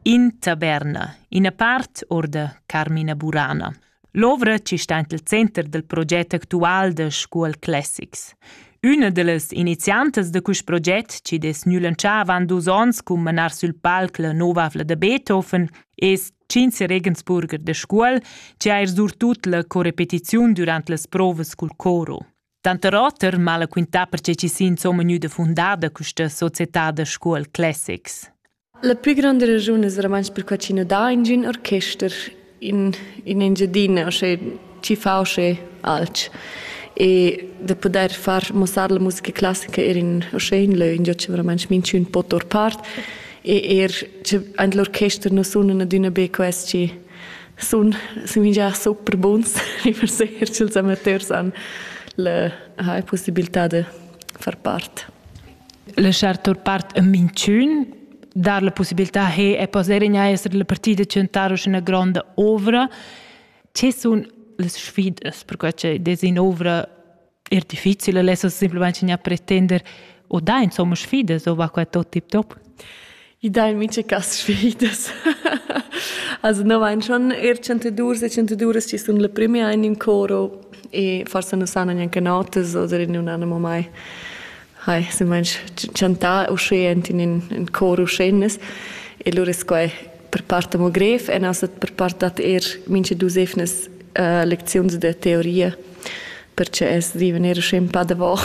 In taberna, ina part or da Carmina Burana. L'ovra ci sta int il center del proget actual de Scuol Classics. Üna de las iniziantas de quist proget, ci des nülanchà avant dus ons cum manar sül palc la nova avla da Beethoven, es Cinze Regensburger de Scuol, ci ha er surtut la corepetiziun durant las provas cul coro. Tanter oter m'ha la quintà perche chi s'ha insomma gnüda fundada quista società da scuol Classics. La plü granda raschun es romansch perquai chi nu dà ingün orchester in, in Engiadina, osché chi fa osché alch. E da pudair far muossar la musica classica eir in, osché in lö ingio cha romansch minchün po tour part e eir cha aint l'orchester nu sunan adüna be quels chi sun, sun già super buns i per ser ch'ils amateurs han la ha possibilità da far part. Laschar tur part a minchün dar la possibilità che e poter in essere la partida centrar una grande ovra. Che sun le sfidas per quella che desina ovra Er difficile lessa simplesmente insegnar a pretender o da insomma sfidas o va qua tot tip top. I dà in mice cas sfidas. also no vain schon er chantadours e chantaduras chi sun la prima in in coro e forse non sanno neanche notas oder non hanno mai hai si manch chantà uscient in in, in coro schennes e lur es quai per part amo grev e nas per part dat eir mincha dus evnas uh, lecziuns da teoria perche es viven eir usche ün pa davò.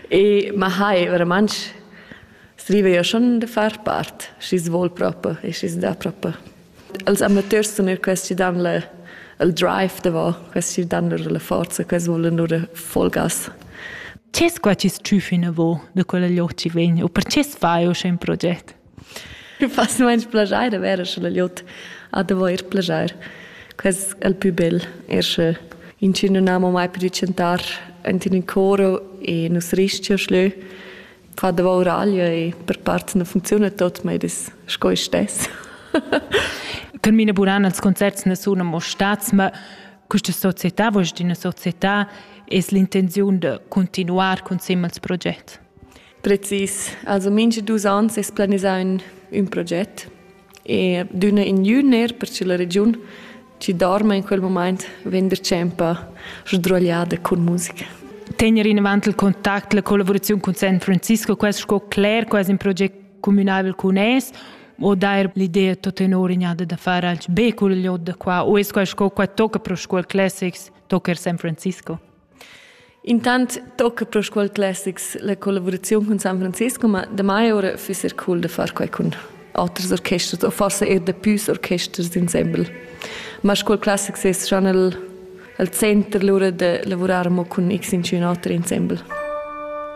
e ma hai verament sviva io schon da far part, schi svol proprio e schi da proprio. Als amateurs sun eir questi dan le, il drive davò, questi dan lur la forza, questi volen nur Vollgas. Ce squacis tschüf inavo da quella lloci vegn u perche fai o in proget? Fas nuench plaschair da verer scha la glieud ha d'avair plaschair. Quest è il pü bel, er sche inchün nun ama mai pudü chantar anta ün coro e nus restia schlö far da vauraglia e per part nu funcziuna tot, ma id es sco id stess. Termina buran els concerts na sun amo stats, ma questa società, vuoi dir, una società, es l'intenziun da continuar cun simil proget? Precis. Also mincha dus ans es planisà ün, ün proget e d'üna in jüner per cha la regiun chi dorma in quel mumaint vegn retschempa sdruagliada cun musica. Tegner inavant il contact, la collaboraziun cun San Francisco, quest sco cler quasi un proget communabel cun es o dair l'idea tot tenor ignada da far alch be cul liot da qua o es quai sco qua tocca pro scuol classics tocca er San Francisco? Intant tocca pro Scuol Classics la collavuraziun cun San Francisco, ma damai ora füss eir cool da far quai cun oters orchesters o forsa eir da püs orchesters insembel. Ma Scuol Classics es schon il, il center lura da lavurar amo cun x intschünater insembel.